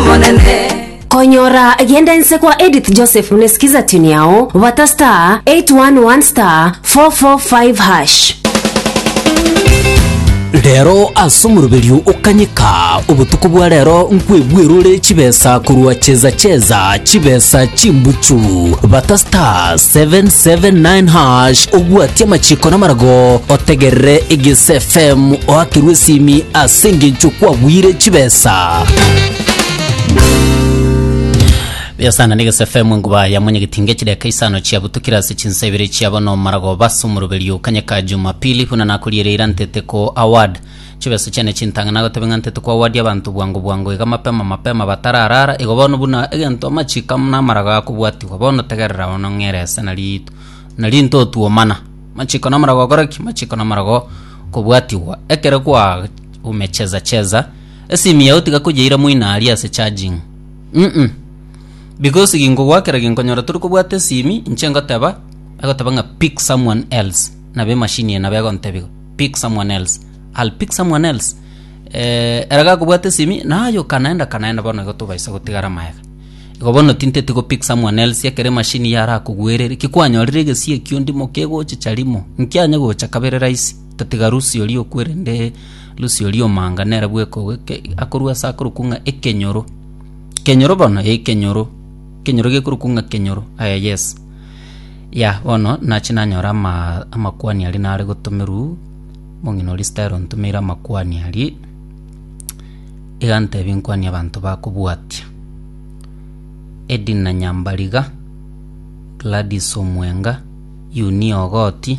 Omonene. Konyora genda ense kwa Edith Joseph mune skiza tune yao bata star 811 star 445 hash. Rero ase omoroberio okanyika obotuko bwa rero nkwebwerure chibesa korwa cheza cheza chibesa chimbuchu bata star 779 hash obwatie amachiko namarago otegerere egese fm oakerwe esimi ase engencho kwabwire chibesa Buya sana negese FM nguba ya mwenye gitinge chideka isano chia butukira ase chinsa ibere chia bono marago basa omoroberi okanye ka jumapili buna nakoriereira ntete ko award chibesa chiane chintang'ana agotebe ng'a ntete ko award abanto bwango bwango iga mapema mapema batararara igo bono buna egento amachiko amo namarago akobwatigwa bono tegerera bono ng'ere ase nari nari ntotuomana machiko namarago gokora ki machiko namarago kobwatigwa ekero kwa umecheza cheza Esimu yao tiga koyeira moino aria ase charging. Uhm. Because ginkogwa kera ginkonyora tori kobwata esimi, inche ngoteba, agoteba ng'a pick someone else. Nabo emachine eye nabo egontebia igo, pick someone else. I'll pick someone else. Eh, ere gakobwata esimi, naye okanaenda kanaenda bono igo tobaisa gotigara magega. Igo bono tinteti go pick someone else, ekero emachine eye arakogwerere, ki kwanyorire egesie ekio ndimo kegochicha rimo, inki anyegocha kabere rahisi. Tatiga Lusio rioku, erinde Lusio ri'omanga nere bw'ekogu eke akorua ase akorokwa ng'a ekenyoro. Kenyoro bono? Ee kenyoro, kenyoro gekorokwa ng'a kenyoro, aye yes. Yah, bono nachi nanyore amaa amakuani aria nare gotomerwa, omong'ina oria Stella ontomeire amakuani aria, iga ntebia nkwanie abanto bakobwatia, Edna Nyambariga, Gladys Omwenga, Euniya Ogoti.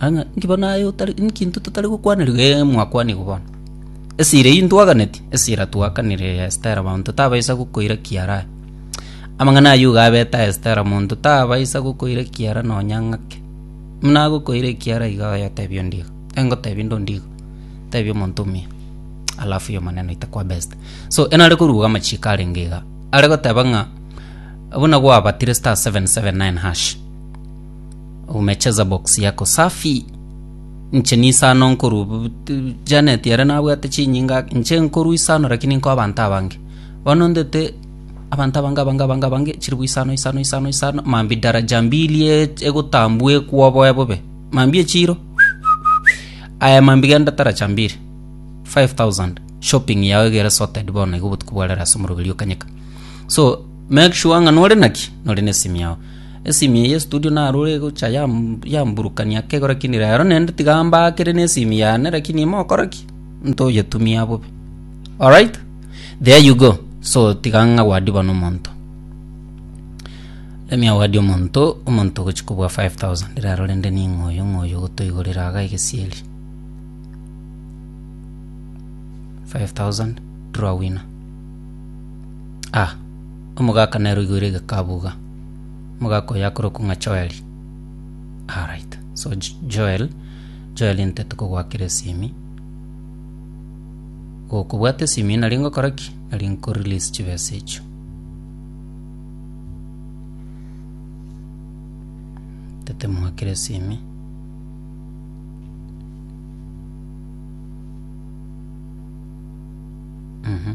Ang'e, inki bono aye otari inki intwe totari gokwaneriwa? Ee, mwakwanigwa bono. Esira eyio ntwaganeti, esira twakanire ya Estera, monto tabaisa gokoira kiara aye. Amang'ana ayio iga abete a Estera, monto tabaisa gokoira kiara nonya ng'ake. Buna agokoira ekiara iga oye otebi onde iga, ee ngotebi inde onde iga, otebi omonto omuya, alafu y'omonene oite kwaba Esther. So ere nare koruga amachiiko arenge iga, are goteba ng'a buna gwabatire star seven seven nine hash. Umecheza box yako safi. Nche nisano nkoru Janet yare nabwate chinyinga nche nkoru isano lakini nko abantu abange. Bono ndete abantu abange abange abange abange chiri buisano isano isano isano mambi daraja mbili e- egotambua ekwoboe bobe. Mambi echiro Aya mambi genda taraja mbili 5000 shopping yao egere sorted bono igo obotuko bwarero ase omoroberi okanyeka. So make sure ng'a nore naki nore nesimi yao. Esimi eye ye studio naroro egocha yamburukania kegora kende rero nende tiga mbakere ne esimi yane lakini ime okora ki ntoyetumia bobe alright there you go so tiga ng'awadi bono omonto let me award omonto omonto ogochi kobua 5000 rero rende ning'o oyo ng'o oyo ogotoigorera iga egesieri 5000 draw winner ah. Omogaka nere oigoire egekabuga, omogaka oye akorokwa ng'a Joeli. Alright, so Jo- Joel, Joeli ntete kogoakera esimi. Gokobwata esimi nari ngokora ki? Nari nkorelease chibesa echio. Ntete moakere esimi. Mhm.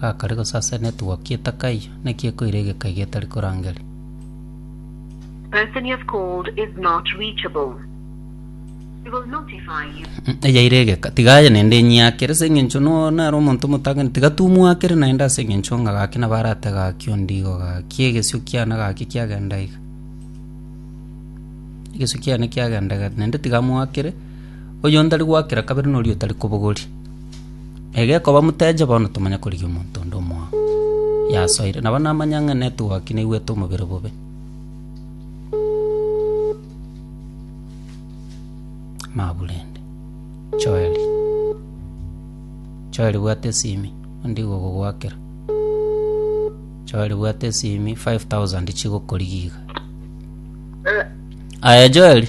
Gakare gosasera netwoki etakaiyo, naki ekoira egeka iga etari korangeri. Eyaire egeka, tiga aye naende enyiakere, ase engencho noo nare omonto omotangenereria, tiga tumwakere naende ase engencho ng'a gaki nabo arate gaki onde igo gaki, egesio kiane gaki kiagenda iga. Egesio kiane kiagenda iga naende tiga amwakere. Oyonde ari goakera kabere noria otari kobogoria. Na gekoba moteche bono tomanye korigia omonto onde omoao yasoire. Nabo namanya ng'a netogwaki naigwete omobere bobe. Maburende. Joeli. Joeli bwate esimi onde igo ogogoakera. Joeli bwate esimi 5000 chigokorigia iga. Aye Joeli.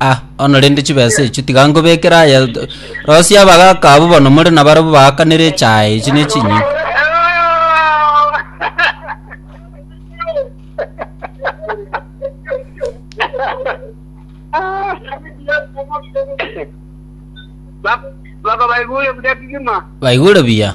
Ah, bono rende chibesa echio tiga nkobekere aya t- rosia abagaka abwo bono more nabarabwo baakanere echae echi ne chinyeni Baba baigure buya kigima. baigure buya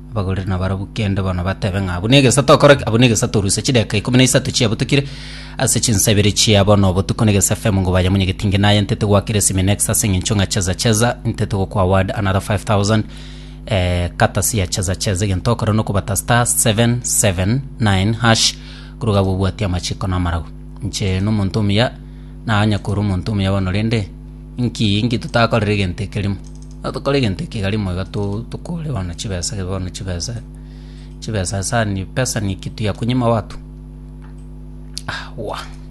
Abagoreri nabarabwo kende bono batebe ng'a, Buna egesa tokore ki? Abwo negesa toruse chidakika ikomi na isato chiabo tokire ase chinsa ibere chia bono obotuko negesa FM ngo baye munye getinge naye ntete gwakire esimi next ase eng'encho ng'a cheza cheza ntete gokwa award another 5000 eh, katasi ya cheza cheza egento okore nokobata star 779 hash korwa gabo obwati amachiko na amaragu inche nomonto omuya naganya koro omonto omuya bono rende inki inki totakorera egento ekerimo Notokore egento eke igare moyo iga tokore bono chibesa gebe bono chibesa chibesa asani pesa niki tuyakonyima watu? Aawaa.